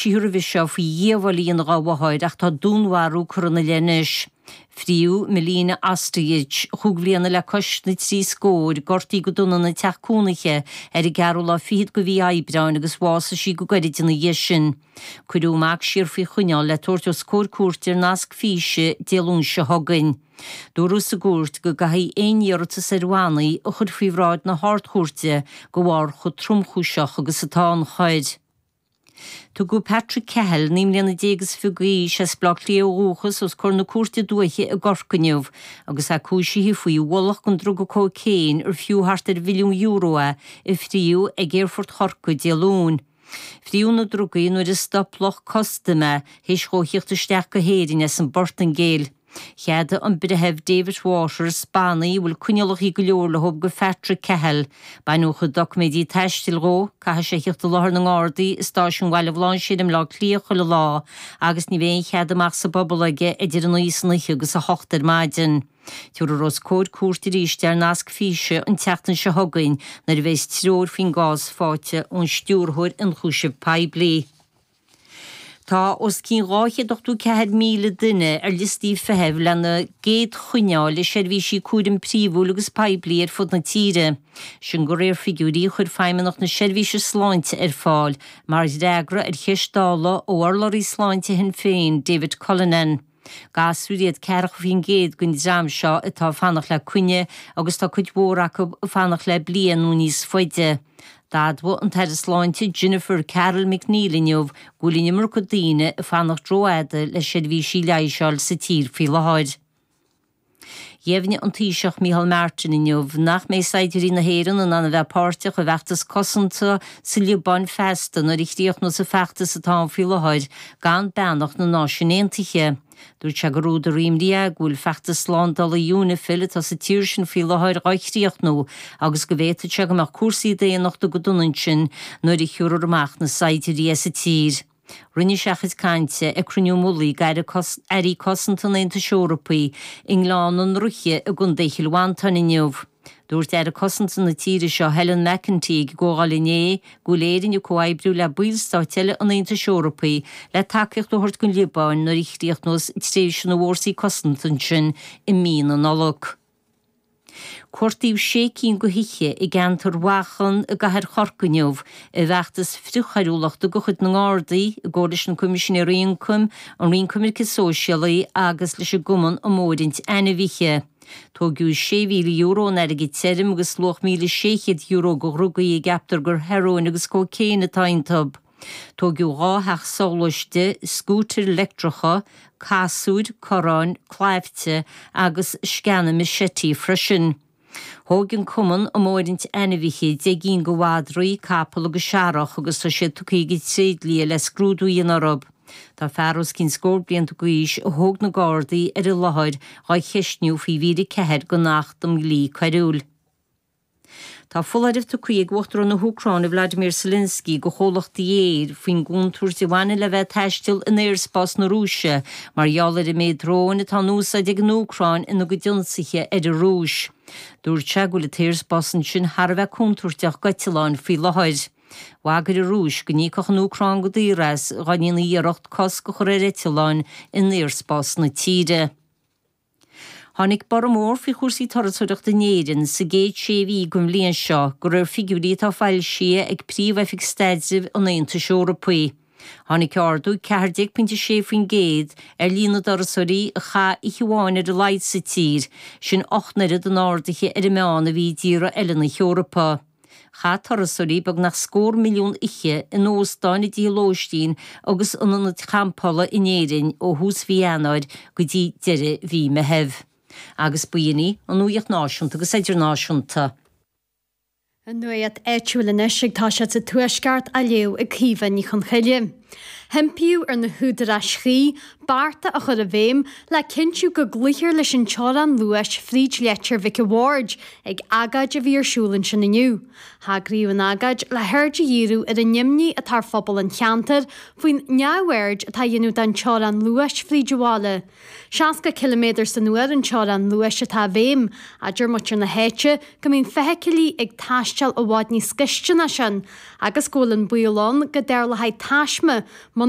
Tchíthear roimhe seo faoi dhíobháil a dhéanamh dhá mháthair ach tá dúnmharú curtha 'na leith anois. Fríodh Milena Ostojic, chúig bhliana le cois na trí scóir, gortaíodh go dona ina teach cúnaithe ar an gceathrú lá fichead de mhí Aibreáin agus bhásaigh sí go gairid ina dhiaidh sin. Cuireadh a mac siar faoi choinneáil le tabhairt os comhair cúirte ar nasc físe Dé Luain seo chugainn. Dúradh sa gcúirt go gcaithfí aon iarratas ar bhannaí a chur faoi bhráid na hArd-Chúirte de bharr chomh tromchúiseach agus atá an choir. Tugadh Patrick Cahill, naoi mbliana déag is fiche d'aois, as Baile Átha Cliath ó dhúchas, os comhair na Cúirte Dúiche i gCorcaigh inniu agus é cúisithe faoi bhulc den druga cóicéin ar fiú thart ar mhilliún euro é, a fríodh ag Aerfort Chorcaí Dé Luain. Fríodh na drugaí nuair a stop lucht custaim é théis dhó thíocht isteach go hÉirinn as an bPortaingéil. Cheadaigh an Breitheamh David Waters, bannaí a bhfuil coinníollacha go leor leothub do Phatrick Cahill, baineadh a chuid doiciméidí taistil dhó, caithfidh sé thíocht i láthair na nGardaí i Stáisiún Bhaile Bhlainséir i mBleá Cliath chuile lá agus ní bheidh aon chead amach sa bpobal aige idir a naoi san oíche agus a hocht ar maidin. Tiúrfar os comhair cúirte aríst é ar nasc físe an tseachtain seo chugainn nuair a bheas treoir faoin gcás faighte ón Stiúrthóir Ionchúiseamh Poiblí. Tá os cionn 284,000 duine ar liostaí feithimh lena gcéad choinne a fháil le seirbhísí cúraim príomhúil agus poiblí ar fud na tíre, sin go réir figiúirí a chuir Feidhmeannacht na Seirbhíse Sláinte ar fáil mar fhreagra ar cheist Dála ó urlabhraí sláinte Shinn Féin, David Cullinane. Gasúir iad ceathracha faoin gcéad den dream seo atá ag fanacht le coinne agus tá cuid mhór acu ag fanacht le bliain nó níos faide. D'admhaigh an tAire Sláinte Jennifer Carroll MacNeill inniu go bhfuil an iomarca daoine ag fanacht rófhada le seirbhísí leighis a fháil sa tír faoi láthair. Dheimhnigh an Taoiseach Micheál Martin inniu nach mbeidh saighdiúirí na hÉireann in ann a bheith páirteach i bhfeachtas cosanta sa Liobáin feasta nuair a chríochnós an feachtas atá ann faoi láthair gan beannacht na Náisiún Aontaithe. Dúirt sé gur údar imní é go bhfuil feachtas slándála Unifil atá sa tír sin faoi láthair dhá chríochnú agus go bhféadfadh sé go mbeadh cúrsaí daonnachta go dona ansin nuair a thiúrfar amach na saighdiúirí as an tír. Rinne sé a chuid cainte ag Cruinniú Mullaigh Airí Cosanta an Aontais Eorpaigh i nGleann na nDraoithe i gContae Chill Mhantáin inniu. Dúirt Aire Cosanta na tíre seo, Helen McEntee, ag an gcomhdháil inné go bhfuil Éirinn ag comhoibriú le ballstáit eile an Aontais Eorpaigh le tacaíocht a thabhairt don Liobáin nuair a chríochnós tréimhse na bhFórsaí Cosanta ansin i mí na Nollag. Cuartaíodh sé cinn de thithe i gceantar Mhachain i gcathair Chorcaí inniu i bhfeachtas frithchoiriúlachta de chuid na nGardaí i gcomhar leis na Coimisinéirí Ioncaim, an Roinn Coimirce Sóisialaí agus leis an gCumann um Fhóirint Ainmhithe. Tóigeadh €6,000 in airgead tirm agus luach €1,600 de dhrugaí a gceaptar gur hearóin agus cóicéin atá iontub. Tóigeadh dhá theach soghluaiste, scútair leictreacha, casúir, corráin, claimhte agus sceana machete freisin. Tóigeadh chomh maith roinnt ainmhithe, deich gcinn de mhadraí, capall agus searrach agus tá siad tugtha ag an tréidlia le scrúdú a dhéanamh orthu. Tá fear os cionn scór blianta d'aois a thóg na Gardaí ar an láthair dhá cheistniú faoi mhír 4 den Acht um Dhlí Coiriúil. Tá foláireamh tugtha ag Uachtarán na hÚcráine Vladimir Zelensky do chomhlachtaí aeir faoin gcontúirt a bhaineann le bheith taisteal in aerspás na Rúise mar gheall ar an méid dróin atá in úsáid ag an Úcráin ina gcuid ionsaithe ar an Rúis. Dúirt sé go bhfuil an t-aerspás ansin thar a bheith contúirteach d'eitealláin faoi láthair. Bhagair an Rúis go n-íocfadh an Úcráin go daor as, dhá ndéanfaidís iarracht cosc a chur ar eitealláin in aerspás na tíre. Tháinig borradh mór faoi chúrsaí turasóireachta in Éirinn sa gcéad sé mhí den bhliain seo de réir figiúirí atá foilsithe ag Príomh-Oifig Staidrimh an Aontais Eorpaigh. Tháinig ardú 14.6% ar líon na dturasóirí a chaith oíche amháin ar a laghad sa tír, sin ocht n-oiread an ardaithe ar an meán a bhí i dtíortha eile na hEorpa. Chaith turasóirí beagnach scór milliún oíche in óstáin, i dtithe lóistín agus in ionaid champála in Éirinn ó thús mhí Eanáir go dtí deireadh mhí an Mheithimh. Agus ba shin í an nuaíocht náisiúnta agus idirnáisiúnta. An nuaíocht áitiúil anois agus tá sí sa Tuaisceart á léamh ag Caoimhe Ní Chonchoille. hImpíodh ar na húdaráis chuí bearta a chur i bhfeidhm le cinntiú go gcloíthear leis an teorainn luais fríd Leitir Mhic a' Bhaird ag agóid a bhí ar siúl ansin inniu. hEagraíodh an agóid le haird a dhíriú ar an imní atá ar phobal an cheantair faoin neamhaird atá á dhéanamh den teorainn luais fríd an bhaile. Seasca ciliméadar san uair an teorainn luais atá i bhfeidhm, adeir muintir na háite go mbíonn feithicilí ag taisteal i bhfad níos gaiste ná sin agus go bhfuil an baol ann go dtarlóchaidh taisme muna